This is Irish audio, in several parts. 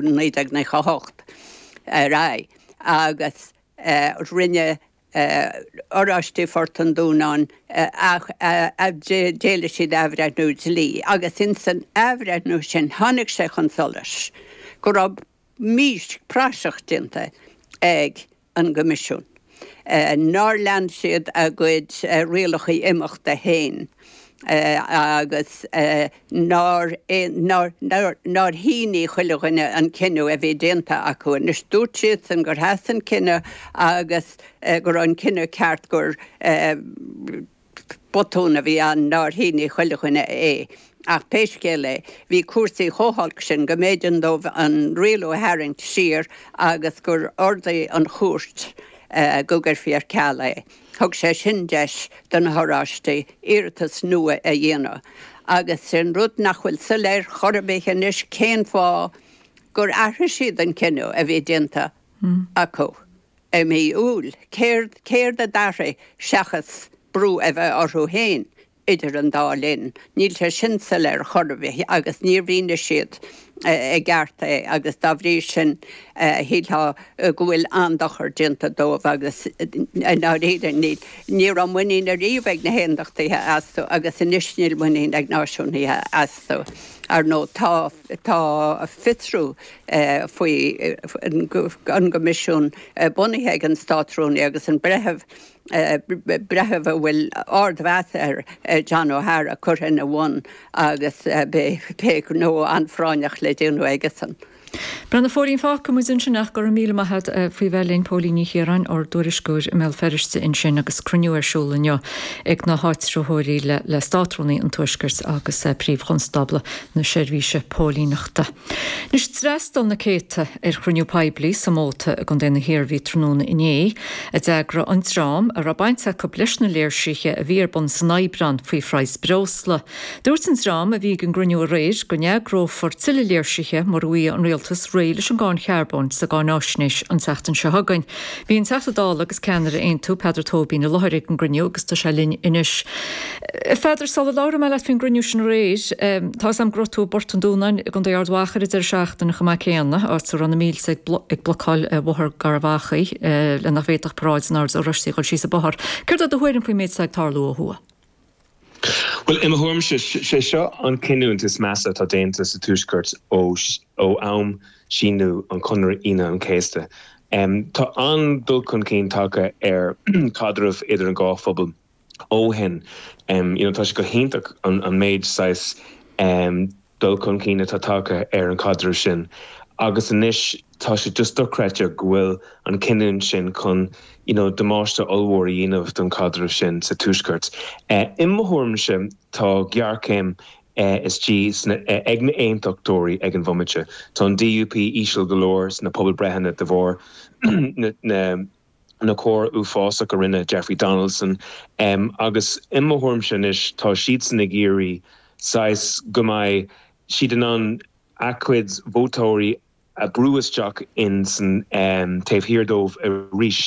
1998 ar aghaidh agus rinne Oráistigh Phort an Dúnáin, d'éiligh siad athbhreithniú dlí agus ins an athbhreithniú sin tháinig sé chun solais go raibh mí praiseach déanta ag an gCoimisiún, nár lean siad a gcuid rialacha imeachta féin agus nár nár shínigh chuile dhuine an cinneadh a bhí déanta acu. Anois, dúirt siadsan gur sheas an cinneadh agus go raibh an cinneadh ceart, gur. Botún a bhí ann nár shínigh chuile dhuine é, ach pé scéal é, bhí cúrsaí chomh holc sin go mb'éigean dóibh an rialú a tharraingt siar agus gur ordaigh an chúirt go gcuirfí ar ceal é. Thug sé sin deis do na hOráistigh iarratas nua a dhéanamh, agus sin rud nach bhfuil soiléir chor ar bith anois cén fáth gur athraigh siad an cinneadh a bhí déanta acu. I mí Iúil, céard, céard a d'athraigh seachas brú a bheith orthu féin idir an dá linn? Níl sé sin soiléir ar chor ar bith agus níor mhínigh siad i gceart é agus dá bhrí sin shílfeá go bhfuil an-dochar déanta dóibh agus i ndáiríre níl, ní raibh muinín ariamh ag na hAondachtaithe astu agus anois níl muinín ag Náisiúnaithe astu. Ar ndóigh Tá fiosrú faoi an gCoimisiún bunaithe ag an Státrúnaí agus an breitheamh, breitheamh a bhfuil ardmheas air, John O'Hara, curtha ina bhun agus beidh gnó an-phráinneach le déanamh aigesan. Breá, a Phóilín, fágfaidh muid ansin ach go raibh míle maith agat faoi bheith linn. Póilín Ní Chiaráin, ár dtuairisceoir i mBéal Feirste ansin agus cruinniú ar siúl inniu ag na háitritheoirí le Státrúnaí an Tuaiscirt agus Príomh-Chonstábla na Seirbhíse Póilíneachta. Anois, d'fhreastail na céadta ar chruinniú poiblí sa Móta i gContae na hIarmhí tráthnóna inné, a d'eagraigh an dream a raibh baint acu leis na léirsithe a bhí ar bun san Aibreán faoi phraghas breosla. Dúirt an dream a bhí ag an gcruinniú aréir go n-eagrófar tuilleadh léirsithe mura bhfaighidh an Rialtas réidh leis an gcáin charbóin sa gcáináisnéis an tseachtain seo chugainn. Bhí an Teachta Dála agus ceannaire Aontú, Peadar Tóibín, i láthair ag an gcruinniú agus tá sé linn anois. Pheadair, sula labhróidh mé leat faoin gcruinniú sin aréir, tá 'fhios a'm go raibh tú i bPort an Dúnáin i gContae Ard Mhacha ar an deireadh seachtaine chomh maith céanna, áit a raibh na mílte ag ag blocáil Bhóthar Gharbh Achaidh le nach bhféadfadh paráid an Oird Oráistigh a dhul síos an bóthar. Céard é do thuairim faoin méid atá ag tarlú ó thuaidh? Bhuel, i mo thuairimse, sé seo an cinniúint is measa atá déanta sa Tuaisceart ó am síníodh an Conradh Aoine an Chéasta. Tá an-dul chun cinn tagtha ar chaidreamh idir an dhá phobal, ó shin, you know, tá sé go hiontach an méid saghas dul chun cinn atá tagtha ar an chaidreamh sin agus anois tá sé just dochreidte go bhfuil an chinneadh sin chun, you know, damáiste ollmhór a dhéanamh don chaidreamh sin sa Tuaisceart. I mo thuairimse tá géarchéim istigh ag na aontachtóirí ag an bhomaite. Tá an DUP íseal go leor sna pobalbhreitheanna de bharr na. na coir uafásach a rinne Jeffrey Donaldson agus i mo thuairimse anois tá siadsan ag iarraidh saghas go mbeidh siad in ann a gcuid vótóirí a bhrú isteach in san taobh thiar dóibh arís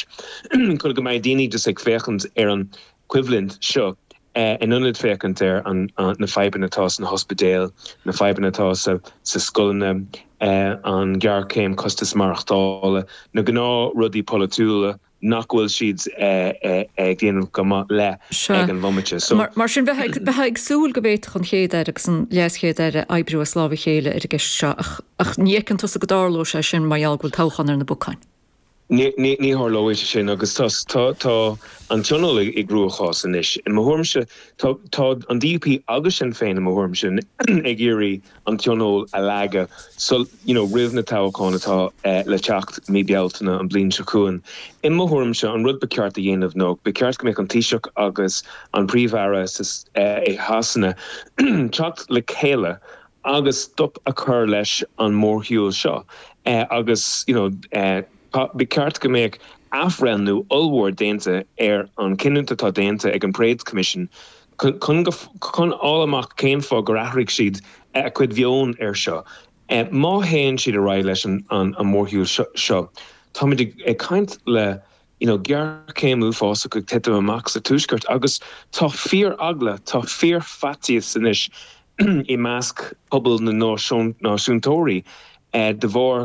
chun go mbeidh daoine just ag féachaint ar an coimhlint seo, in ionad féachaint ar na fadhbanna atá sna hospidéil, na fadhbanna atá sna scoileanna, an ghéarchéim costas maireachtála, na gnáth rudaí polaitiúla nach bhfuil siad ag déanamh go maith le ag an bhomaite. Mar sin, bheifeá ag súil go bhféadfadh an Chéad-Aire agus an LeasChéad-Aire oibriú as lámh a chéile ar an gceist seo, ach ní fheiceann tusa go dtarlóidh sé sin mar gheall go bhfuil toghchán ar na bacáin. Ní tharlóidh sé sin agus tá tá an Tionól i gcruachás anois. I mo thuairimse, tá an DUP agus Sinn Féin, i mo thuairimse, ag iarraidh an Tionól a leagadh so you know roimh na toghcháin atá le teacht mí Bealtaine an bhliain seo chugainn. I mo thuairimse, an rud ba cheart a dhéanamh ná ba cheart go mbeadh an Taoiseach agus an Príomh-Aire i Shasana teacht le chéile agus stop a chur leis an mórshiúl seo agus you know ba cheart go mbeadh athbhreithniú ollmhór déanta ar an chinneadh atá déanta ag an Parades Commission chun fháil amach cén fáth gur athraigh siad a gcuid mheoin ar seo. Má théann siad ar aghaidh leis an mórshiúl seo táimid ag caint le you know, géarchéim uafásach ag titim amach sa Tuaisceart agus tá fíor-eagla, tá fíor-fhaitíos anois i measc pobal na náisiúntóirí de bharr